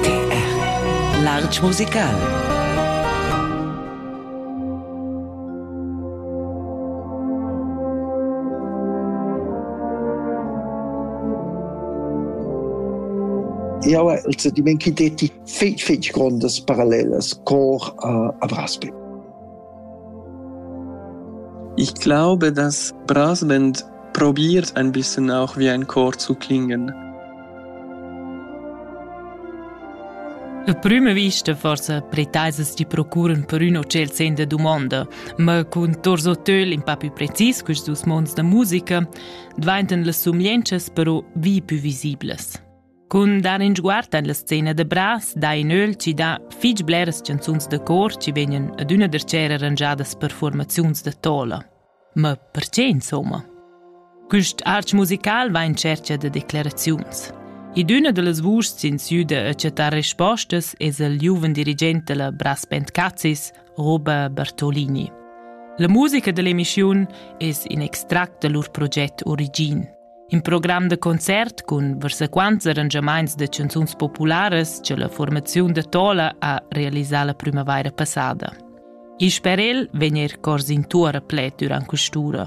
TR Larg musical Jau hai il sentiment che detti fitg, fitg grondas parallelas cor uh, a Brasbeck. Ich glaube, dass Brasband probiert ein bisschen auch wie ein Chor zu klingen. La prima vista forse pretaisas ti procuran per üna celzenda domanda, ma cun torso töl in pa più precis quist dus monds da musica, dvaintan las sumienchas però vi più visiblas. Cun dar in sguard en la scena da bras dà in öl chi dà fich bleras chanzuns da cor chi vegnan adüna darcher arrangiadas per fuormaziuns da tola. Ma perche insomma? Quist arch musical va in tschercha da declaraziuns. In üna da las vuschs in sü da accettare rispostas es il giuven dirigent della Brass Band Cazzis, Roba Bartolini. La musica dell'emissiun es in extract da lur proget Origin. In program da concert cun varsaquants arrangiamaints da chanzuns popularas che la formaziun da Tola ha realisà la primavaira passada. Il sperel vegn er cors in tour a pled durant quest'ura.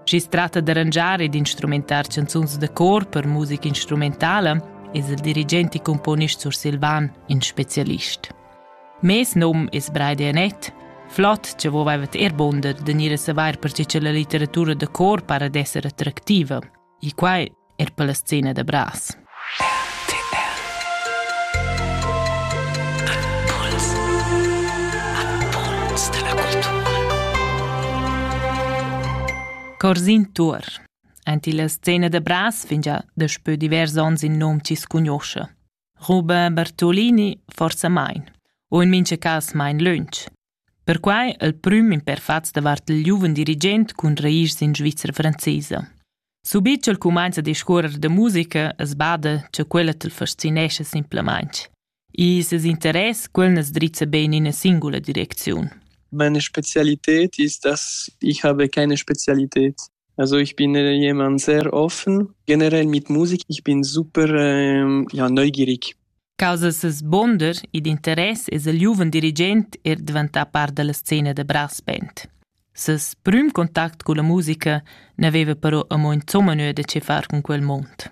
Schi si tratta d'arrangiar ed instrumentar chanzuns da cor per musica instrumentala es il dirigent e componist sursilvan in specialist. Mes num es Braide Anett. Flott che vos vaivat er bunder de gnir a savair perche che la litteratura da cor para d'esser attractiva. E quai er per la scena da Bras. Corsin Tur. Enti la scena da Bras fingia daspö divers ons in nom chi scugnoscha. Ruba Bartolini forsa mein, u in mincha cas mein lönch. Perquai il prüm imperfats davart il giuven dirigent cun rairs in Svizra francesa. Subit ch'el cumainza a discuorrer da musica es bada cha quella t'l fascinescha simplamaing. E ses interess quel as drizza be in ina singula direcziun. Meine Spezialität ist, dass ich habe keine Spezialität. Also ich bin jemand sehr offen. Generell mit Musik, ich bin super ähm, ja, neugierig. Causa ses bonder ed interess es il giuven dirigent er diventà part della scena da brass band. Ses prüm contact con la musica n'aveva però amo insomma nöd da che far con quel mond.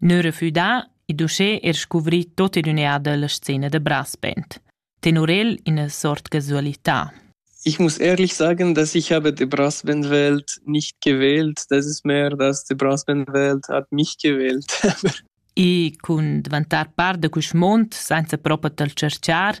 Neu refüdà, id uschè er scuvri tot in ün'eada la scena da brass band. Tenor el ina sort casualità. Ich muss ehrlich sagen, dass ich habe die Brassbandwelt nicht gewählt. Das ist mehr, dass die Brassbandwelt hat mich gewählt. I cun dvantar par da quist mond senza propa tal cerchar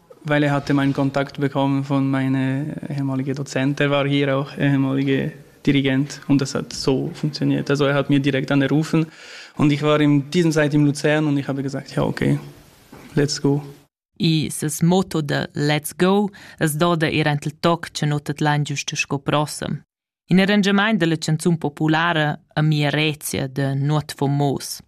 Weil er hatte meinen Kontakt bekommen von meiner ehemaligen Dozent, er war hier auch ehemaliger Dirigent und das hat so funktioniert. Also er hat mir direkt angerufen und ich war in dieser Zeit in Luzern und ich habe gesagt, ja okay, let's go. I ses motto da Let's Go es doda ir ent il toc che nutet lan giusto sco prossem. In arrangiament della canzun populara a mia Rezia de Nuot Fomos.